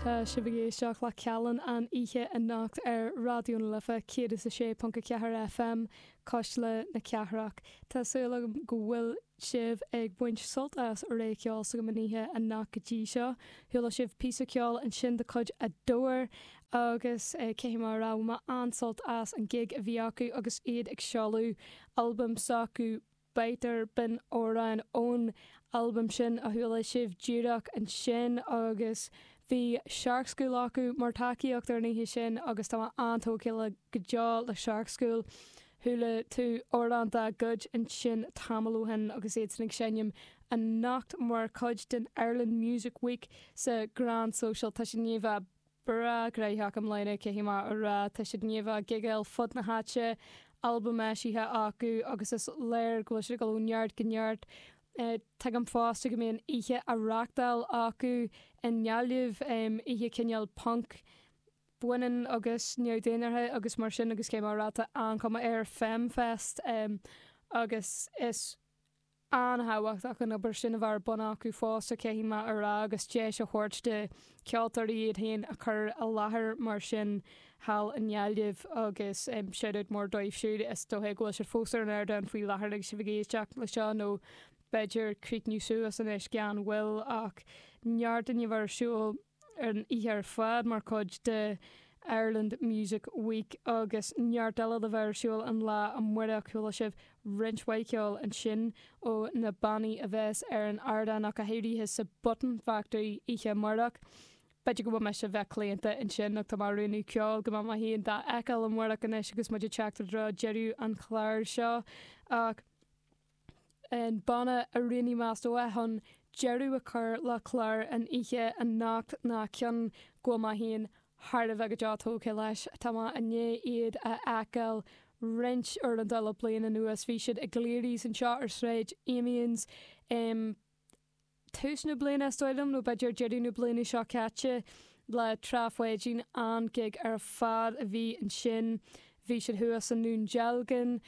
Tá sibh ag éisteacht le Callán an Oíche anocht ar Raidió na Life 106.4 FM cuisle na cathrach. Tá súil agam go bhfuil sibh ag baint sult as rogha ceoil s'agam an oíche anocht go dtí seo. Chuala sibh píosa ceoil ansin de chuid Adore agus caithfidh mé a rá bhain mé an-sult as an gig a bhí acu agus iad ag seoladh albam s'acu Biter b'in amhrán ón albam sin a chuala sibh díreach ansin agus bhí Shark School acu mar tacaíocht ar an oíche sin agus tá mé an-tógtha go deo le Shark School. Chuala tú amhrán dá gcuid ansin tamall ó shin agus iadsan ag seinm anocht mar chuid den Ireland Music Week sa Grand Social. Tá siad i ndiaidh a bheith. Breá gnóthach i mbliana caithfidh mé a rá. Tá siad i ndiaidh a bheith ag gigeáil fud na háite, albam eisithe acu, agus is léir go bhfuil siad ag dul ó neart go neart. Tuigim fosta go mbíonn oíche á reachtáil acu i nGaillimh, oíche cineál punc, baineann agus neamh-dhénártha agus mar sin agus caithfidh mé a rá tá an-chuma ar Fem Fest, agus is. an-thábhachtach an obair sin a bheith ar bun acu fosta caithfidh mé a rá agus deis a thabhairt do cheoltóirí iad féin a chur i láthair mar sin thall i nGaillimh agus shout out mór dóibh siúd is dócha go bhfuil siad fós ar an ardán faoi láthair agus sibh ag éisteacht le seo nó b'fhéidir críochnú suas anois gan mhoill ach neart i ndiaidh a bheith ar siúl ar an oíche ar fad mar chuid de Ireland Music Week agus neart eile le bheith ar siúl an lá amárach. Chuala sibh roinnt mhaith ceoil ansin ó na bannaí a bheas ar an ardán ach go háirithe sa Button Factory oíche amárach. B'fhéidir go bhfuil mise a bheith claonta ansin ach tá mé ag roghnú ceoil go mbeidh mé féin dá fheiceáil amárach anois agus muid ag teacht i dtreo deireadh an chláir seo ach an banna a roghnaigh mé anseo chun deireadh a chur le clár an oíche, anocht ná ceann go bhfuil mé féin thar a bheith go deo tógtha leis. Tá mé i ndiaidh iad a fheiceáil roinnt uaireanta le bliain anuas, bhí siad i gCleary's anseo ar Shráid Amiens, tús na bliana is dóigh liom, nó b'fhéidir deireadh na bliana seo caite, le Trá Pháidín, an-gig ar fad a bhí ansin. Bhí siad thuas i nDún Dealgan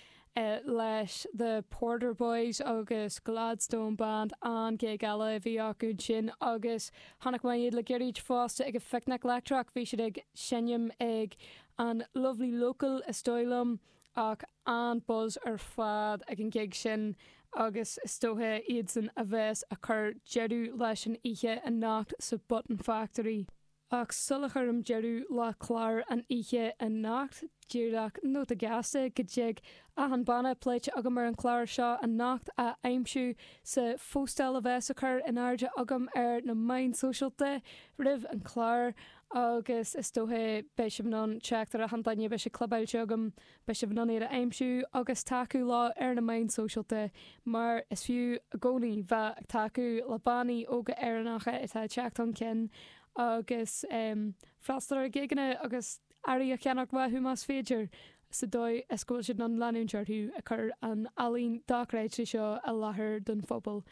leis The Porter Boys agus Gladstone Band an-gig eile a bhí acu ansin agus chonaic mé iad le gairid fosta ag an Phicnic Leictreach, bhí siad ag seinm ag an Lovely Local is dóigh liom. Ach an-buzz ar fad ag an ghig sin agus is dócha iadsan a bheas a chur deireadh leis an oíche anocht sa Button Factory. Ach sula gcuirim deireadh le clár an oíche anocht, díreach nóta gasta go dtig achan banna pléite agam ar an chlár seo anocht a aimsiú sa phóstáil a bheas a chur in airde agam ar na meáin shóisialta roimh an chlár, agus is dóiche, beidh sibh in ann teacht ar achan duine a bheas clibeáilte agam, beidh sibh in ann iad a aimsiú agus tacú leo ar na meáin shóisialta, mar is fiú i gcónaí bheith ag tacú le bannaí óga Éireannacha atá ag teacht chun cinn, agus em, freastal ar a ngigeanna agus earraí a cheannach uathu más féidir, sa dóigh is go bhfuil siad in ann leanúint orthu ag cur an ealaín dochreidte seo i láthair don phobal.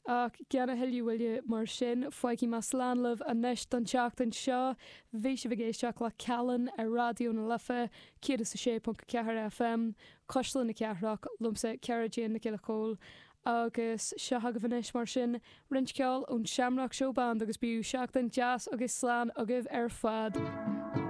Ach gan a thuilleadh moille, mar sin, fágfaidh mé slán libh anois don tseachtain seo. Bhí sibh ag éisteacht le Callan ar Raidió na Life, 106.4 FM, Cuisle na Cathrach, liomsa, Ciara Jane Nic Giolla Chomhaill, agus seo agaibh anois, mar sin, roinnt ceoil ón Shamrock Showband, agus bíodh seachtain deas agus slán agaibh ar fad!